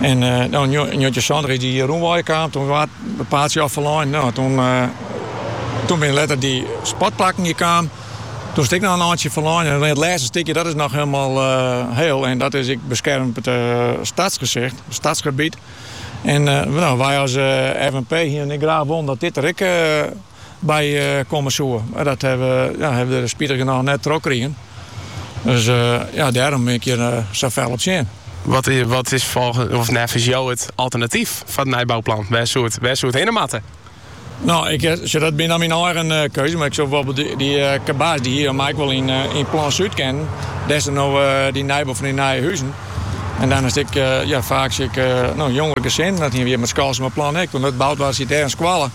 En no yn njoggentjinsantich is dy rûnwei der kaam, toen waard it paadsje al ferlein. No, toen, toen binne letter dy sportplakken hjir kaam. Toen is it ek noch in eintsje ferlein. En it lêste stikje, dat is noch hielendal hiel. En dat is ek beskermd stadsgezicht, stadsgebiet. En no, wy as FNP hienen ek graach wollen dat dit der ek by komme soe. Mar dat ha we der spitigernôch net trochkrigen. Dus ja, dêrom bin ik hjir sa fel op tsjin. Wat is neffens jo it alternatyf foar it nijbouplan? Wêr soe it hinne moatte? No, dat binne dan myn eigen keuzes, mar ik soe byvoarbeeld dy Kabas dy hie foar my ek wol yn it plan Súd kinnen, dêr't no dy nijbou fan dy nije huzen. En dan hast ek faaks jongere gesinnen, dat hiene we hjir mei it Skalsumerplan ek, want dat boud waard siet dêr in skoalle.